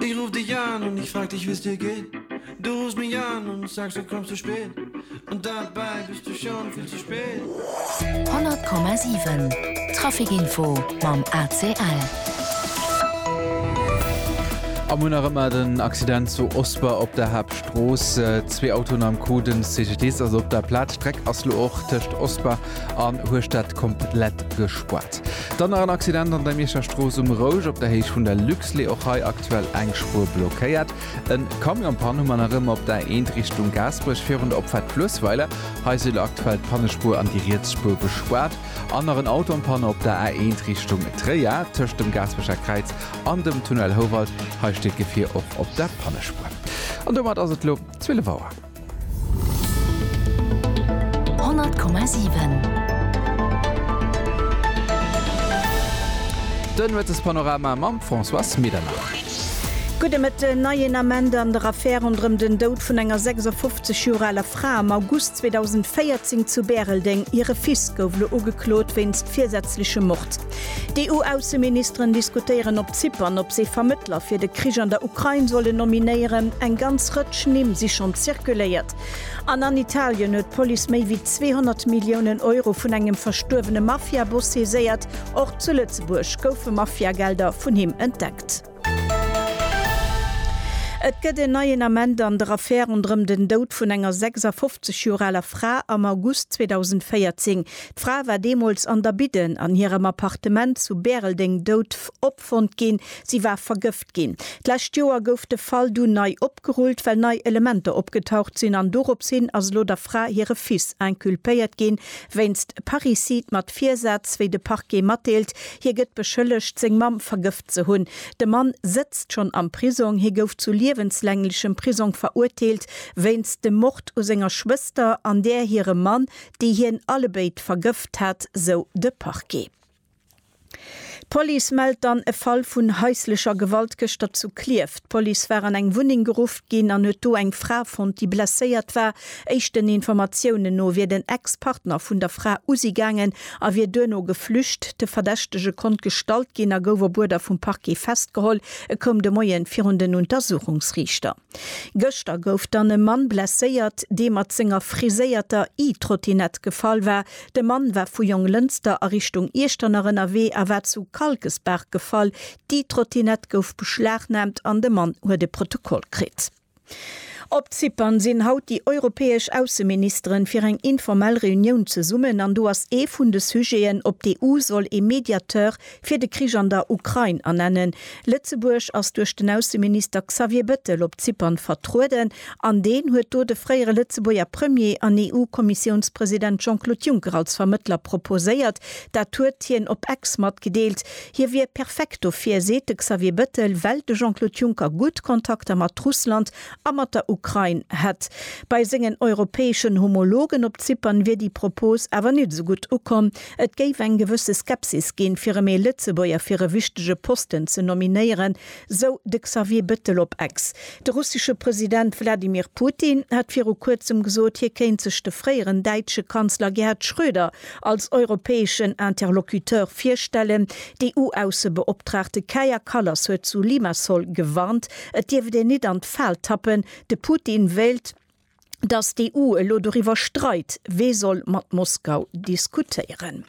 Ich ruf dich an und ich frag dich wie's dir geht Du rufst mich an und sagst du kommst zu spät Und dabei bist du schon viel zu spät. 100,7 Trafic Info mam ACL. Am hunn nach ëmmer den Accident zu Osper op der Haaptstrooss. Zwee Autoen am Coup, den CGDIS ass op der Plaz. D'Streck ass lo och tëscht Osper An hues dat komplett gespuart. Dann nach en Accident an der Mierscher Strooss um Rouge op der Héicht vun der Luxlait. Och hei aktuell eng Spuer blockéiert. E Camion-Pann hu mer nach ëmmer op der Eent Richtung Gaasperech virun der Opfahrt Fluessweiler. Hei si lo aktuell d'Pannespuer an déi riets Spuer gespuart. An nach en Auto am Panne op der A1 Richtung Tréier tëscht dem Gaasperecher Kräiz an dem Tunnel Houwald. Hei steet d'Gefier och op der Pannespuer. An domat ass et lo 12 Auer. Den Nuetespanorama mam Françoise Medernach. Gudde Mëtten. Neien Ament an der Affär ronderëm den Doud vun enger 56 Joer aler Fra am August 2014 zu Bäreldeng. Hire Fils gouf elo ugeklot wéinst virsätzlechem Mord. D'EU-Ausseministeren diskutéieren op Zypern, ob se Vermëttler fir de Krich an der Ukrain sollen nominéieren. Eng ganz Rëtsch Nimm si schonn zirkuléiert. An an Italien huet d'Police méi wéi 200 Milliounen Euro vun engem verstuerwene Mafia-Boss saiséiert. Och zu Lëtzebuerg goufe Mafia-Gelder vun him entdeckt. Et gëtt en neien Ament an der Affär ronderëm den Doud vun enger 56 Joer aler Fra am August 2014. D'Fra war deemools an der Bidden an hirem Appartement zu Bäreldeng dout opfonnt ginn. Si war vergëft ginn. D'lescht Joer gouf de Fall dunn nei opgerullt, well nei Elementer opgetaucht sinn an dorops hin ass elo der Fra hire Fils inculpéiert ginn, wéinst Parricide mat Virsaz, wéi de Parquet matdeelt. Hie gëtt beschëllegt, seng Mamm vergëft Ze hunn. De Mann sëtzt schonn am Prisong. Hie gouf zu liewenslänglechem Prisong verurteelt wéinst dem Mord u senger Schwëster an där hirem Mann, déi hien allebéid vergëft hat, sou de Parquet. D'Police mellt dann e Fall vun haislecher Gewalt gëschter zu Klierf. D'Police war an eng Wunneng gerufft ginn an huet do eng Fra fonnt, déi blesséiert war. Éischten Informatiounen no wier den Ex-Partner vun der Fra usi gaangen a wier duerno geflücht. De Verdächtege konnt gestallt ginn a gouf op Uerder vum Parquet festgeholl. E koum de Moie virun den Untersuchungsriichter. Gëschter gouf dann e Mann blesséiert, dee mat senger friséierter E-Trottinett gefall war. De Mann war vu Jonglënster a Richtung Iechternach ënnerwee a war zu Kalkesbaach gefall. D'E-Trottinett gouf beschlagnaamt an de Mann huet e Protokoll kritt. Op Zypern sinn haut déi europäesch Ausseministeren fir eng informell Reunioun zesummen an do ass ee vun de Sujeten, ob d'EU soll ee Mediateur fir de Krich an der Ukrain ernennen. Lëtzebuerg ass duerch den Ausseminister Xavier Bettel op Zypern vertrueden an deen huet do de fréiere Lëtzebuerger Premier an EU-Kommissiounspresident Jean-Claude Juncker als Vermëttler proposéiert. Dat huet hien op Ex matgedeelt. Hie wier perfekt dofir, seet de Xavier Bettel, well de Jean-Claude Juncker gutt Kontakter mat Russland a mat der Ukrain hätt. Bei sengen europäeschen Homologen op Zypern wier déi Propos awer net esou gutt ukomm. Et géif eng gewësse Skepsis ginn, fir rëm ee Lëtzebuerger fir e wichtege Posten ze nominéieren, Esou de Xavier Bettel op Ex. De russesche President Wladimir Putin hat viru kuerzem gesot, hie kéint sech de fréieren däitsche Kanzler Gerhard Schröder als europäeschen Interlocuteur virstellen. D'EU-Aussebeoptraagte Kaja Kallas huet zu Limassol gewarnt, et dierft een nit an d'Fal tappen, de Putin wéilt, datt d'EU elo doriwwer streit, wee soll mat Moskau diskutéieren.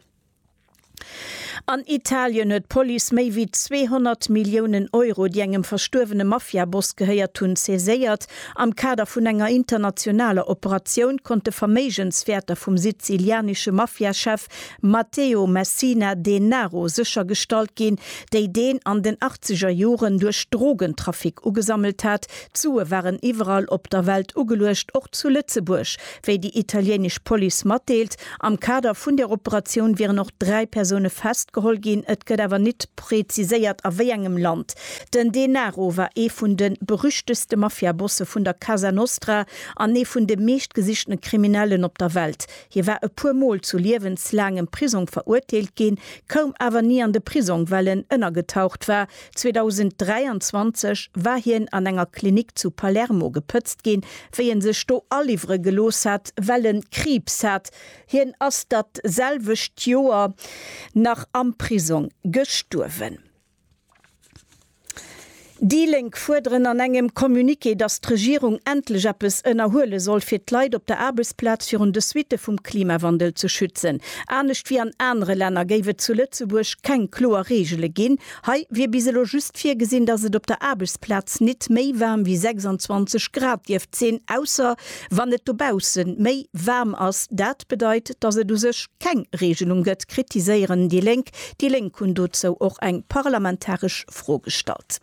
An Italien huet d'Police méi wéi 200 Milliounen Euro, déi engem verstuerwene Mafia-Boss gehéiert hunn, saiséiert. Am Kader vun enger internationaler Operatioun konnte Verméigenswäerter vum sizilianesche Mafia-Chef Matteo Messina Denaro séchergestallt ginn, déi deen an den achtzeger Joren duerch Drogentrafic ugesammelt hat. D'Sue waren iwwerall op der Welt ugeluecht, och zu Lëtzebuerg. Wéi déi italieenesch Police matdeelt, am Kader vun der Operatioun wieren och dräi Persoune festgeholl ginn. Et gëtt awer nit preziséiert a wéi engem Land. Den Denaro war ee vun de berüchtegste Mafia-Bosse vun der Casa Nostra an ee vun de meeschtgesichtene Kriminellen op der Welt. Hie war e puer Mol zu liewenslaangem Prisong verurteelt ginn, koum awer ni an de Prisong, well en ënnergetaucht war, 2023 war hien an enger Klinik zu Palermo gepëtzt ginn, wéi en sech do aliwwere gelooss hat, well en Kriibs hat. Hien ass dat selwecht Joer nach am Prisong gestuerwen. Déi Lénk fuerderen an engem Communiqué, datt d'Regierung endlech eppes ënnerhuele soll, fir d'Leit op der Aarbechtsplaz virun de Suitte vum Klimawandel ze schützen. Anescht wéi an anere Länner géif et zu Lëtzebuerg keng kloer Reegele ginn, Hei wier bis elo just virgesinn, dass et op der Aarbechtsplaz nit méi waarm wéi 26 Grad dierft sinn, ausser wann et dobausse méi waarm ass. Dat bedeit, dass et u sech keng Reegelung gëtt, kritiséieren déi Lénk. Déi Lénk hunn dozou och eng parlamentaresch Fro gestallt.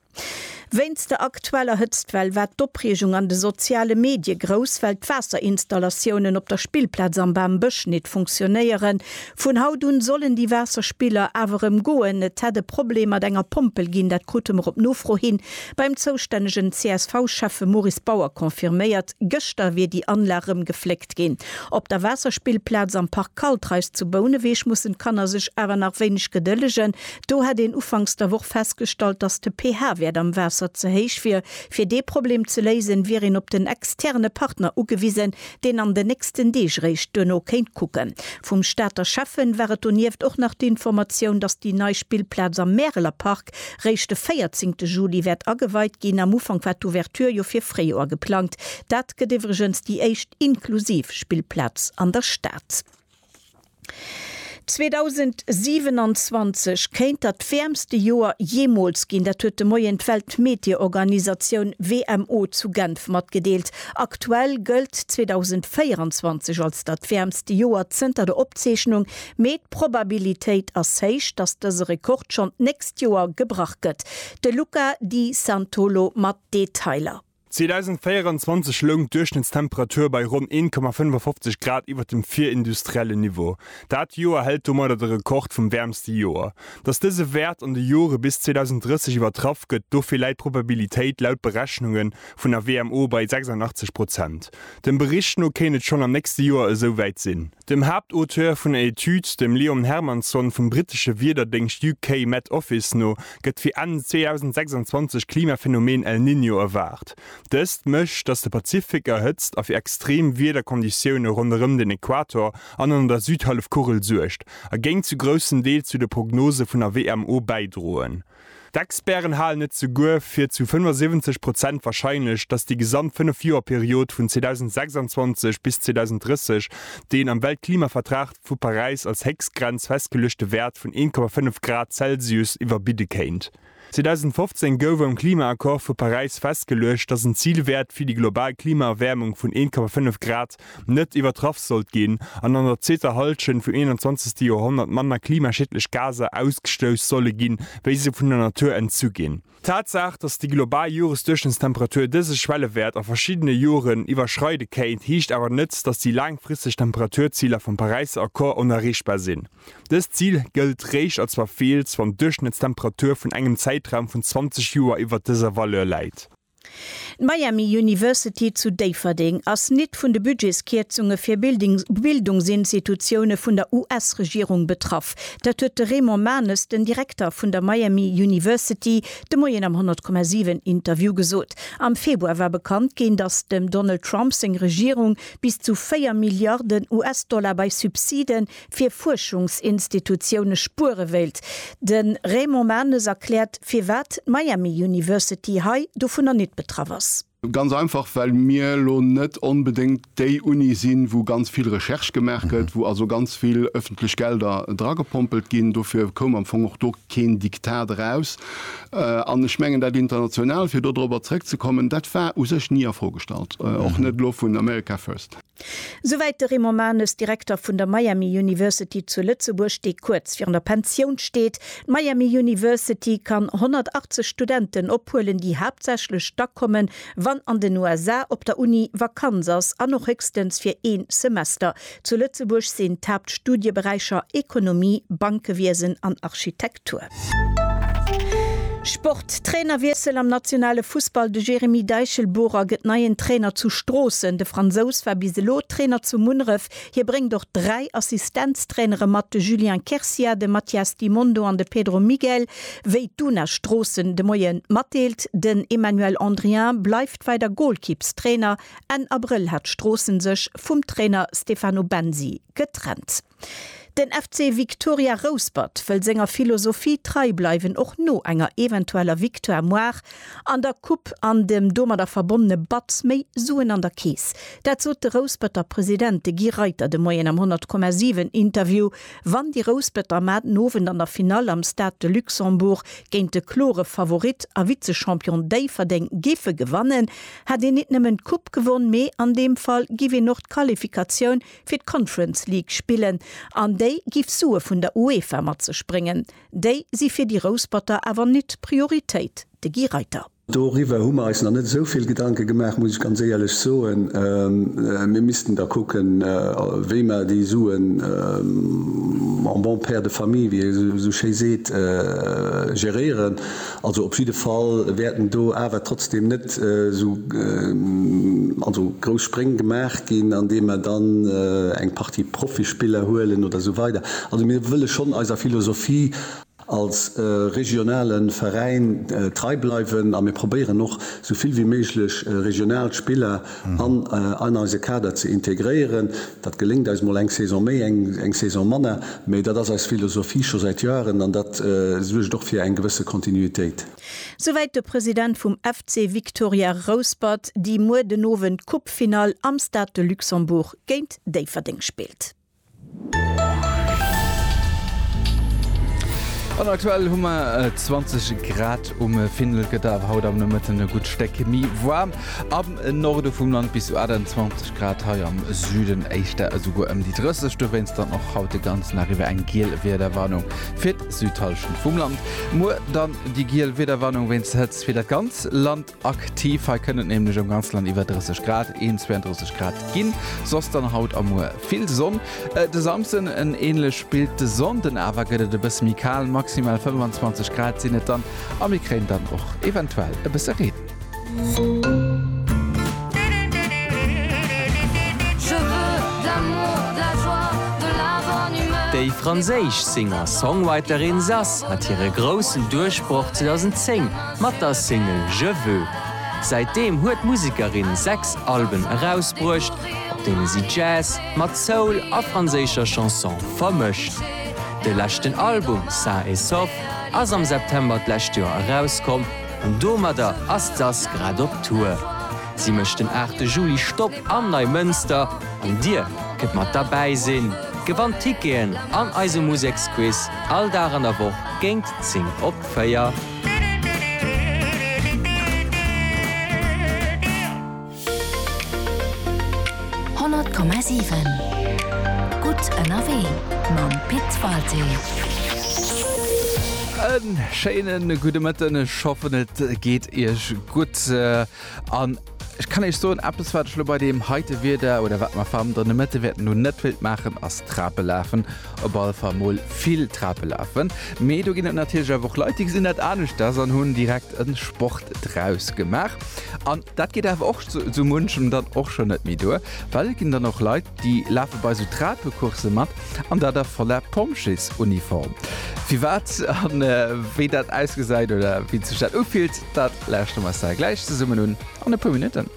Wéinst der aktueller Hëtztwell war d'Opreegung an de soziale Medie grouss, well d'Waasserinstallatioune op der Spillplaz am Bam Bësch nit funktionéieren. Vun haut un sollen déi Waasserspiller awer erëm goen. Et hätt e Problem mat enger Pompel ginn, dat krute mer op Nofro hin beim zoustännegen CSV-Schäffe Maurice Bauer confirméiert. Gëschter wier déi Anlag erëm gefléckt ginn. Op der Waasserspillplaz am Park Kaltreis zu Bouneweg mussen d'Kanner sech awer nach wéineg gedëllegen. Do hätt een ufanks der Woch festgestallt, dass de pH-Wäert am Waasser ze héich wier. Fir dee Problem ze léisen, wier een op den externe Partner ugewisen, deen an den nächsten Deeg réischt duerno kéint kucken. Vum Stater Schäffen war et donieft och nach d'Informatioun, datt déi nei Spillplaz am Märeler Park réischt de véierzéngte Juli wäert ageweit ginn. Am Ufank war d'Ouverture jo fir Fréijoer geplangt. Dat gëtt iwwregens déi éischt inklusiv Spillplaz an der Stad. 2027 kéint dat wäermste Joer jeemools ginn. Dat huet de Moien d'Weltmeteorganisatioun WMO zu Genf matgedeelt. Aktuell gëllt 2024 als dat wäermste Joer zënter der Opzeechnung, mee d'Probabilitéit ass héich, datt dëse Rekord schonn d'nächst Joer gebrach gëtt. De Luca Di Santolo mat Detailer. 2024 loung d'Duerchschnëttstemperatur bei ronn 1,55 Grad iwwer dem virindustriellen Niveau. Dat Joer hält domadder de Rekord vum wäermste Joer. Datt dëse Wäert an de Jore bis 2030 iwwertraff gëtt, dofir läit d'Probabilitéit laut Berechnunge vun der WMO bei 86 Prozent. Dem Bericht no kéint et schonn am nächste Joer esou wäit sinn. Dem Haaptauteur vun der Etüd, dem Liam Hermanson vum brittesche Wiederdéngscht UK Met Office no, gëtt fir Enn 2026 d'Klimaphenomen El Niño erwaart. Dëst mécht, datt de Pazifik erhëtzt a fir extrem Wiederkonditioune ronderëm den Equator an an der Südhallefkugel suergt, a géing zu groussem Deel zu de Prognose vun der WMO bäidroen. D'Experten halen et souguer fir zu 75 Prozent warscheinlech, datt déi gesamt 5 Joer Period vun 2026 bis 2030 deen am Weltklimavertrag vu Paräis als Héchstgrenz festgeluechte Wäert vun 1,5 Grad Celsius iwwerbidde kéint. 2015 gouf am Klimaaccord vu Paräis festgeluecht, datt en Zilwäert fir déi global Klimaerwäermung vun 1,5 Grad net iwwertraff sollt ginn an an der zweeter Hallschent vum 21. Joerhonnert manner klimaschiedlech Gaser ausgestouss solle ginn, wéi se vun der Natur entzu ginn. D'Tatsaach, dass déi global Joresduerchschnëttstemperatur dëse Schwellewäert a verschiddene Joren iwwerschreide kéint, heescht awer net, dass déi laangfristeg Temperaturziler vum Paräisser Accord onerreechbar sinn. Dëst Zil gëllt réischt als verfeelt, wann d'Duerchschnëttstemperatur vun engem Zäitraum vun 20 Joer iwwert dëser Valeur läit. D'Miami University zu Déifferdeng ass nit vun de Budgetskierzunge fir Bildungsinstitutioune vun der US-Regierung betraff. Dat huet de Raymond Manes, den Direkter vun der Miami University, de Moien am 100,7 Interview gesot. Am Februar war bekannt ginn, datt dem Donald Trump seng Regierung bis zu 4 Milliarden US-Dollar bei Subside fir Fuerschungsinstitutioune spuere wéilt. De Raymond Manes erkläert, firwat d'Miami University hei dovunner nit betraff ass. Ganz einfach, well mir elo net onbedéngt déi Uni sinn, wou ganz vill Recherche gemaach gëtt, wou also ganz vill ëffentlech Gelder dragepompelt ginn. Dofir koum am Fong och do keen Diktat eraus. An ech mengen, dat International, fir do dorobber zrëckzekommen, dat war u sech ni a Fro gestallt, och net elo vun America First. Souwäit de Raymond Manes, Direkter vun der Miami University zu Lëtzebuerg, déi kuerz virun der Pensioun steet. D'Miami University kann 180 Studenten ophuelen, déi haaptsächlech da kommen, wann an den USA op der Uni Vakanz ass an och héchstens fir ee Semester. Zu Lëtzebuerg sinn d'Haaptstudieberäicher Ekonomie, Bankewiesen an Architektur. Sport, Trainerwiessel am nationale Fussball, de Jeremy Deichelboerer gëtt neien Trainer zu Stroossen. De Fransous war bis elo Trainer zu Munneref. Hie bréngt och dräi Assistenztrainere mat, de Julien Quercia, de Mathias Di Mondo an de Pedro Miguel, wéi d'UNA Stroossen de Moie matdeelt. Den Emmanuel Andrien bleift weider Golkippstrainer. Enn Abrëll hat Stroossen sech vum Trainer Stefano Bensi getrennt. Den FC Victoria Rouspert wëll senger Philosophie trei bleiwen, och no enger eventueller Victoire moar an der Coupe an dem domadder verbonnene Batz méi Suen an der Keess. Dat sot de Rousperter President, de Guy Reiter, de Moien am 100,7 Interview, wann déi Rousperter mar den Owend an der Finall am Stade de Luxembourg géint de klore Favorit a Vize-Champion Déifferdeng géife gewannen, hätt een nit nëmmen d'Coupe gewonn, mee an deem Fall giff een och d'Qualifikatioun fir d'Conference League spillen an déi giff Sue vun der UEFA mat sech bréngen. Déi si fir déi Rousperter awer nit d'Prioritéit, de Guy Reiter. Doriwwer hu mer eis nach net esou vill Gedanke gemaach, muss ech ganz éierlech soen. Mir missten da kucken, wéi mer déi Suen en bon père de famille, wéi ee esou schéi seet, geréieren. Also op jidde Fall wäerten do awer trotzdem net esou grouss Spréng gemaach ginn, andeem mer dann eng Partie Profispiller huelen oder esou weider. Also mir wëlle schonn eiser Philosophie als regionale Veräin trei bleiwen a mir probéieren och esou vill wéi méiglech regional Spiller an an eise Kader ze integréieren. Dat geléngt eis mol eng Saison méi, eng Saison manner, mee dat ass eis Philosophie scho säit Joaren an dat suergt och fir eng gewësse Kontinuitéit. Souwäit de President vum FC Victoria Rouspert, déi muer den Owend d'Coupe-Finall am Stade de Luxembourg géint Déifferdeng spillt. An aktuell hu mer 20 äh, Grad um äh, Findel gëtt awer haut am Nomëtten e gutt Steck mi warm. Am äh, Norde vum Land bis zu 28 Grad hei am Süden éischter esouguer ëm déi 30 du wéinst dann och haut de ganzen Arrive eng giel Wiederwarnung fir d'Südhalschend vum Land. Muer dann déi giel Wiederwarnung wéinst Hëtz fir dat ganz Land. Aktiv, hei kënnt et nämlech am ganze Land iwwer 30 Grad, 31 Grad ginn, soss dann haut a muer vill Sonn. De Samsden en änlech Bild, de Sonnde awer gëtt et e bësse méi kal, maximal 25 Grad sinn et dann a mir kréien dann och eventuell e bësse Reen. Déi franséisch Singer-Songwriterin Zaz hat hire groussen Duerchbroch 2010 Mat der Single Je veux. Säitdeem huet d'Musekerin sechs Alben erausbruecht, op deene si Jazz mat Soul a franséischer Chanson vermëscht. De leschten Album Sain et sauf ass am September d'lescht Joer erauskomm an domadder ass d'Sass grad op Tour. Si mécht den 8 Juli Stopp am Neimënster an dir kënnt mat derbäi sinn, gewannt Ticketen an eise Museksquiz all Dag an der Woch géint 10 op 4. Honnert Komma siwen Gutt ënnerwee mam Pit Walté. En schéinen gudde Mëtten, ech hoffen et geet iech gutt. An ech kann Iech soen, eppes wat ech elo bei deem heite Wieder oder wat mer vam dënne Mëtte wäerten hunn, net wéilt maachen, ass Trape lafen. Op alle Fall mol vill Trape lafen. Mee do ginn et natierlech awer och Leit, déi gesinn dat aneschters an hunn direkt e Sport draus gemaach. An dat geet awer och sou munchem dann och schonn net méi duer, well et ginn dann och Leit, Déi lafe bei sou Trapecoursse mat an dat a voller Pompjeesuniform. Firwat an wéi dat ausgesäit oder wéi sech dat ufillt, dat lauschteren mer eis da gläich zesummen un an e puer Minutten.